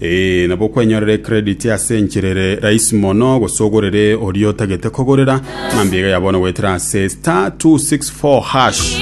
Ee, nabo okwenyorera ecredit ase enchera ere rahisi mono, gose ogorere oria otagete kogorera, ng'a mbiga ya bono goetera ase star 264 hash.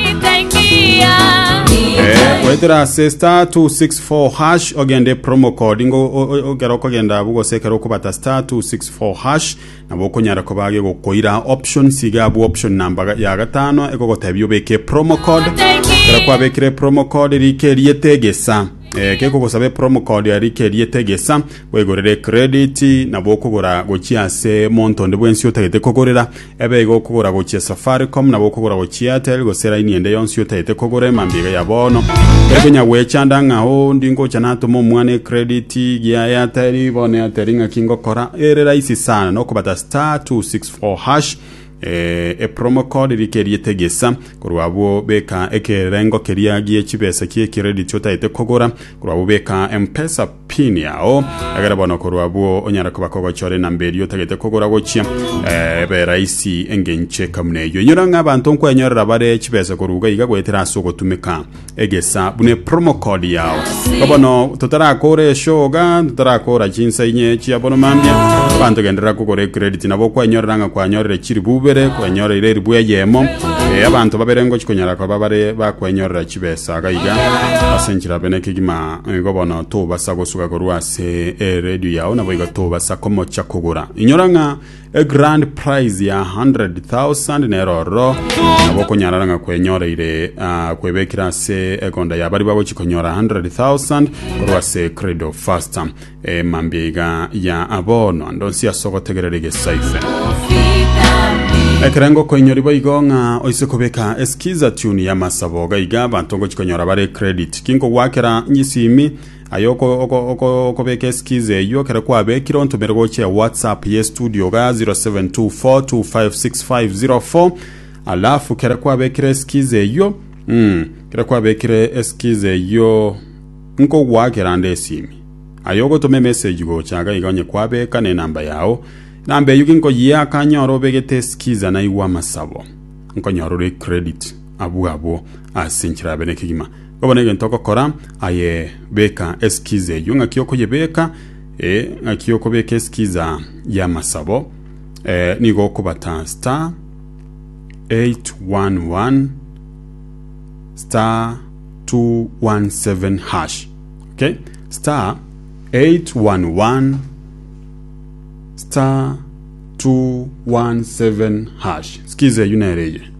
Eh, goetera ase star 264 hash ogende promo code ngo o- o- okero okogenda abu gose ekero okobata star 264 hash nabo okonyara koba gegokoira option siga abu option namba ga- ya gatano egogotebia obeke promo code ekero kwabekire promo code rike riete egesa Eh, kekogosaba epromo code ya rike riete egesa bwegorere credit nabo okogora gochia ase monto onde bwensi otagete kogorera ebe igo okogora gochia safaricom nabo okogora gochia airtel gose laini ende yonsi otagete kogora emambia iga ya bono tari konya gwechanda ng'a oh ndi ngocha natoma omwana ecredit gia airtel bono airtel ng'aki ngokora ere rahisi sana nokobata star 264 hash E promo code rikerie tegesa korwa abwo beka ekerengo keria gie chibesa kie credit otaete kogora korwa abwo beka mpesa pin yao egere bono korwa abwo onyara koba kogochora enamba eria otagete kogora gochia eh, ebe rahisi engenche kamuna eyo inyora ng'a abanto nkwenyorera bare chibesa koruga iga goetera ase ogotumeka egesa buna epromo code yao ko bono totarakora eshoga totarakora chinsa inye chia bono mambia banto genderera kogora ecredit nabo kwanyorera ng'a kwanyorire chiribu ibere kwanyorire eribu eyemo Eh, abanto babere ngochi konyara koba bare bakwenyorera chibesa iga iga ase enchera abe nekegima igo bono tobasa gosuga korwa ase eredio yao naboigo tobasa komocha kogora inyora ng'a egrand prize ya 100,000 nero ororo nabo okonyarara ng'a kwenyoreire ah, kwebekire ase egonda ya bari bagochi konyora 100,000 korwa ase credo fast emambia iga ya abono ando nsi ase ogotegerera egesaife ekerengo koinyori boigo ng'a oise kobeka eskiza tune ya masabo gaiga abanto ngochi konyora bare credit kinkogwakera nyisimi Aye okobeka eskiza eyio ekero kwabekire ontomere gochia whatsapp ye studio iga 0724256504 alafu kere kwabekire eskiza eyio mm, kere kwabekire eskiza eyio nkogoakera nde esimi aye ogotoma emessage gocha iga iga onye kwabeka ne enamba yao enamba eyio ginkoyia akanyora obegete eskiza naigwa amasabo nkonyora ore credit abwo abwo ase nchirabe nekegima Bobe negento ogokora, aye beka eskiza eyio. Ng'aki okoyebeka, e, ng'aki okobeka eskiza y'amasabo. E, nigo okobata star 811 star 217 hash. Okay? Star 811 star 217 hash. Skiza eyio nere eye.